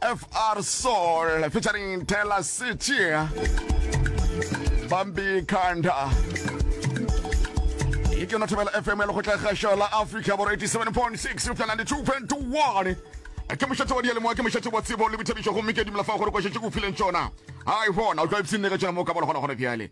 FR Soul featuring Taylor City Bambi Kanda e ke yona thobela fm ya lekgotla kgašo la africa boro 87.6 upša 92.1 ke mošate wa dialemoa ke mošate wa tsebo le boithabišo gomme ke dumela fa gore kwašetše ke o fileng tšona ai bona o tla ipsene ge tšona mo ka bona gona gone bjale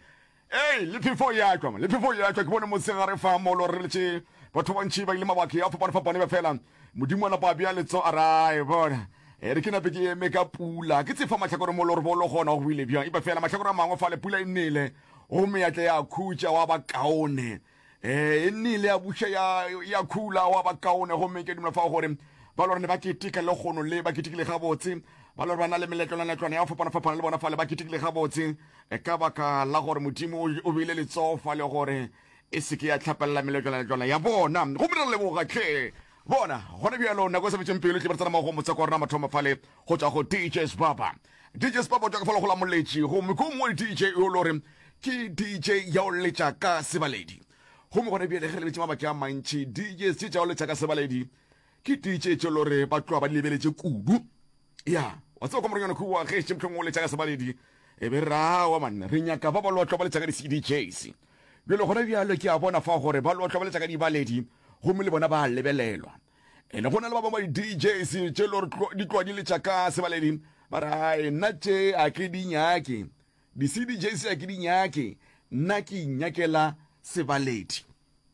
Ee, le phefo ya tšwa, le phefo ya tšwa. Ke bone mosegare fa molo re letše batho bantši ba ile mabake a fapane-fapane ba fela. Modimo a napa a bea letso a rae bona. E re ke nape ke eme ka pula, ke tsefa mahlakore molo re bolo gona go bile bjang. Ipa fela mahlakore a mangwe fale pula e nele, go meatla ya khutša wa ba kaone. Ee, e nnile ya buša ya, ya khula wa ba kaone gomme ke dumela fa gore ba lore ne ba keteka le gono le ba ketekile gabotse ba lore ba na le meletlwanaletlwana ya fapana-fapana le bona fale ba ketekile gabotse e ka baka la gore modimo o beile letsogo fa le gore e seke ya tlhapelela meletlwanaletlwana ya bona gomme re leboga tlhe bona gona bjalo nako e sa betseng pelo tle ba tsena mago motse kwa rona mathomo fale Go tšwa go DJ Sbaba. DJ Sbaba o tšwa ka fa legola moletši gomme ko mongwe DJ yo lo re ke DJ ya o letša ka sebaledi gomme gone bjale ge lebeletše mabaki a mantši DJ tše tša o letša ka sebaledi ke DJ tše lo re ba tloa ba lebeletše kudu ya wa tseba kwa moronyana kua ge še mohlong o letša ka sebaledi e be rawa manne re nyaka ba ba lotlwa ba letša ka di-cdjs bjale gona bjalo ke a bona fa gore ba lotlwa ba letša ka dibaledi gomme le bona ba lebelelwa ene go na le ba bangwe di-djs tše le gore di tloa di le tšaka sebaledi ba re ae nna tše a ke di nyake di-cdjs a ke di nyake nna ke inyakela sebaledi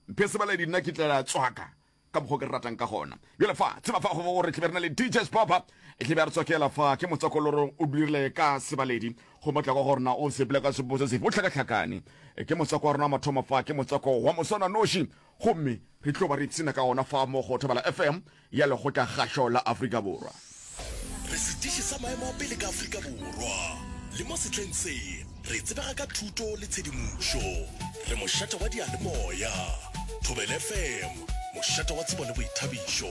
mphe sebaledi nna ke tlela tswaka ka mokgwa ke re ratang ka gona jale fa tseba fa gobe gore tlebe re na le dj spapa e tlebe a re tswakela fa ke motsakoloro o dirile ka sebaledi go motla kwa gorena o sepele ka sepo se sefe o tlhakatlhakane e ke motswako wa rona mathomo fa ke motswako wa moswana noši Gomme re tlo ba re ipshina ka ona fa mo go Thobela FM ya Lekgotla-kgašo la Afrika Borwa. Re sediši sa maemo a pele ka Afrika Borwa, le mo sehleng se, re tsebega ka thuto le tshedimošo. Re mošate wa diyalemoya. Thobela FM, mošate wa tsebo le boithabišo.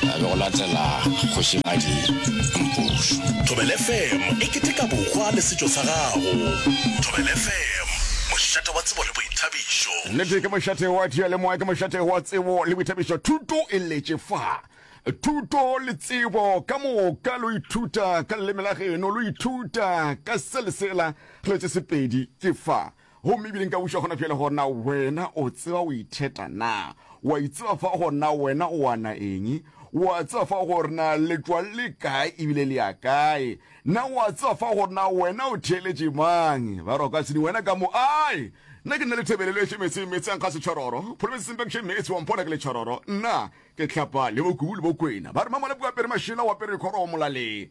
A be go latela Kgošigadi Mpošu. Thobela FM e keteka bokgwa le setšo sa gago. Thobela FM, mošate wa tsebo le boithabišo. Nnete ke mošate wa diyalemoya, ke mošate wa tsebo le boithabišo. Thuto e letše fa. Thuto le tsebo ka moka lo ithuta ka leleme la geno, lo ithuta ka se le sela, re letše sepedi ke fa. Gomme ebile nka buša gona bjale gona wena o tseba o itheta na? O a itseba fa gona wena o ana eng? O a tseba fa gore na letšwa le kae ebile le ya kae? Na o a tseba fa gore na wena o theeletše mang? Ba re o ka se ni wena ka mo ae. Nna ke nna le thebelelo efe metseng, metse a nkga setšhororo, Province Simbekshe metse wa mpona ke letšhororo, nna ke tlhapa le bokubu le bokwena. Ba re mamala bua apere mašela o apere dikgoro o molaleng.